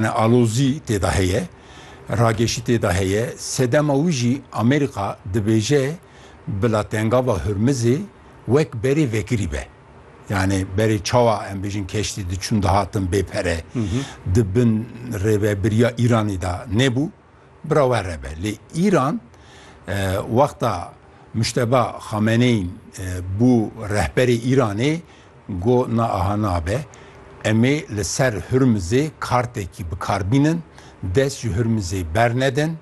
Ne alozî tê de heye, rageşî tê de heye. Sedema wî jî Amerîka dibêje bila Tengava Hurmizê wek berê vekirî be. Yanî berê çawa em bêjin keştî diçûn dihatin bê pere di bin rêvebiriya Îranî de nebû. Bira we re be. Lê Îran wexta Muşteba Xameneyîn bû rehberê Îranê got na aha nabe. Em ê li ser Hurmizê kartekî bikarbînin, dest ji Hurmizê bernedin.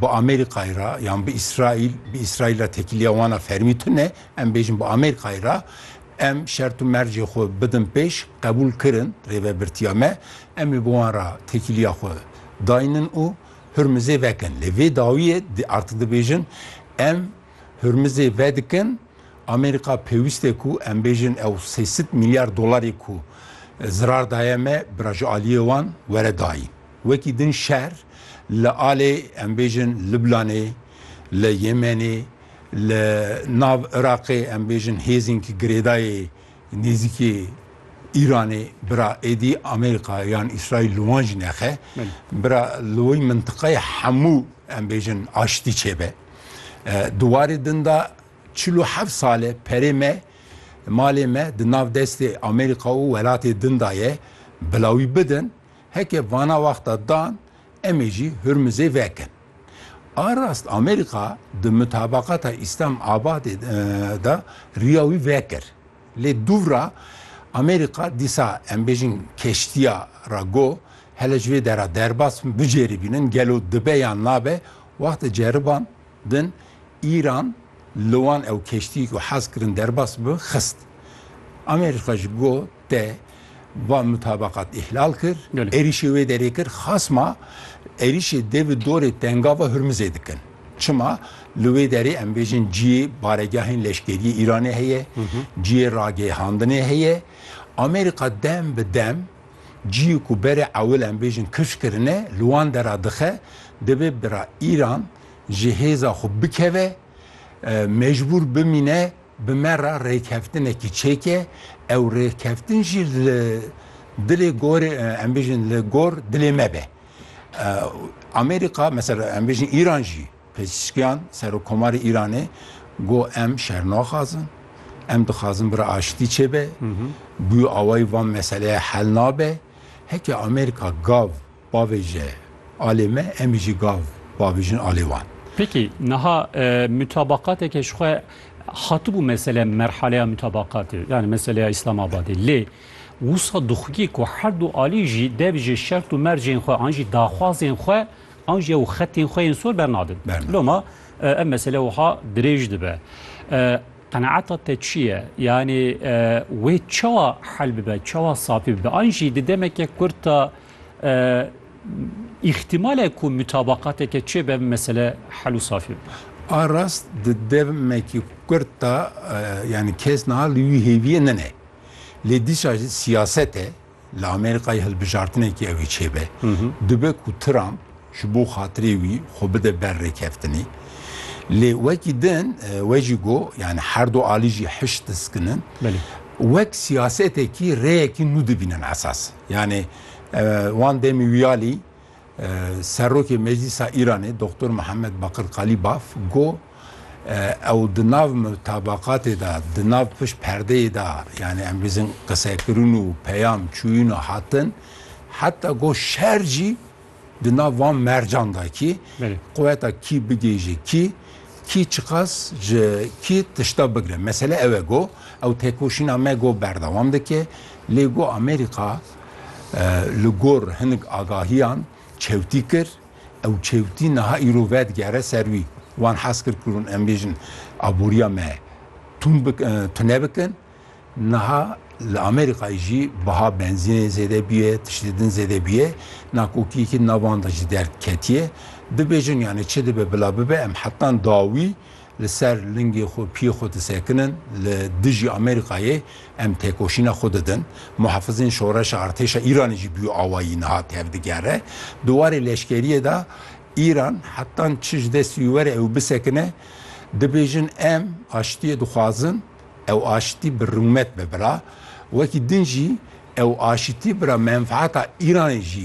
Bi Amerîkayê re yan bi Îsraîl, bi Îsraîl re tekîliya wan a fermî tune, em bêjin bi Amerîkayê re, Em şert û mercê xwe bidin pêş, qebûl kirin rêvebirtiya me, em ê bi wan re têkiliya xwe daynin û Hurmizê vekin. Lê vê dawiyê di artik dibêjin, em Hurmizê vedikin, Amerîka pêwîst e ku em bêjin ew sê sed mîlyar dolarê ku zirar daye me bira ji aliyê wan were dayîn. Wekî din şer li alê em bêjin Lublanê, li Yemenê, Li nav Iraqê em bêjin hêzên ki girêdayê nêzîkê Îranê bira êdî Amerîka yan Îsraîl li wan jî nexe. Bira li wî mintiqeyê hemû em bêjin aştî çêbe. Di warê din de çil û heft sal e perê me malê me di nav destê Amerîka û welatê din de ye bila wî bidin. Heke vana wexta dan em ê jî Hurmizê vekin. A rast Amerîka di mutabaqata Îslam Abadê de riya wî vekir. Lê dûvra Amerîka dîsa em bêjin keştiya re got hele ji vê dera derbas bin biceribînin gelo dibe yan nabe wexta ceriban din Îran li wan ew keştiyê ku hez kirin derbas bibin xist. Amerîka jî got. te van mutabakat îhlal kir, êrîşê wê derê kir, xasma êrîşê dê bi dorê Tengava Hurmizê dikin. Çima li wê derê em bêjin ciyê baregehên leşkeriyê Îranê heye, ciyê ragêhandinê heye. Amerîka dem bi dem ciyê ku berê ewil em bêjin kifş kirine li wan dera dixe, divê bira Îran ji hêza xwe bikeve, mecbûr bimîne bi me re rêkeftinekî çêke, ew rêkeftin jî li dilê gorê em bêjin li gor dilê me be. Amerîka mesela em bêjin Îran jî Pezîşkiyan Serokkomarê Îranê got em şer naxwazin, em dixwazin bira aştî çêbe, bi wî awayî van meseleye hel nabe. Heke Amerîka gav Pavêje alê me, em jî gav pavêjin alê wan. Pêkî niha mutabaqateke ji xwe hatibû mesele merhaleya mutabaqatê yanî meseleya Îslamabadê lê wisa dixwî ku her du alî jî dev ji şert û mercên xwe an jî daxwazên xwe an jî ew xetên xwe yên sor bernadin. Loma ev mesele wiha dirêj dibe. Qenaeta te çi ye? Yanî wê çawa hel bibe, çawa safî bibe? An jî di demeke kurt de îxtîmale ku mutabaqateke çêbe mesele hel û safî bibe. A rast di demekî kurt da yanî kes niha li wî hêviyê nene. Lê dîsa jî siyaset e, li Amerîkayê hilbijartinekî ew ê çêbe. Dibe ku Trump ji bo xatirê wî xwe bide ber rêkeftinê. Lê wekî din we jî got, yanî her du alî jî hişt diskinin. Wek siyasetekî rêyekî nû dibînin esas. Yanî wan demî wiyalî Serokê Meclîsa Îranê Doktor Mihemed Bakir Qalîbaf got, Ew di nav mutabaqatê de, di nav pişt perdeyê de yanî em bêjin qisekirin û peyam çûyîn û hatin. Heta got şer jî. Di nav van mercan de kî quweta kî bigihîje kî, kî çiqas ji kî tişta bigire. Mesele ew e ku ew têkoşîna me ku berdewam dike, lê ku Amerîka li gor hinek agahiyan çewtî kir, ew çewtî niha îro vedigere ser wî. Wan hez kir ku em bêjin aboriya me tune bikin. Niha li Amerîkayê jî biha benzînê zêde bûye, tiştê din zêde bûye. Nakokiyekî nav wan de jî derketiye. Dibêjin yanî çi dibe bila bibe em hetan dawî li ser lingê xwe, piyê xwe disekinin. Li dijî Amerîkayê em têkoşîna xwe didin. Muhafizên şoreşa artêşa Îranê jî bûye awayî niha tevdigere. Di warê leşkeriyê de Îran hetan çi ji destî were ew bisekine. Dibêjin em aştiyê dixwazin. Ew aşitî bi rûmet be bira, wekî din jî ew aşitî bira menfaeta Îranê jî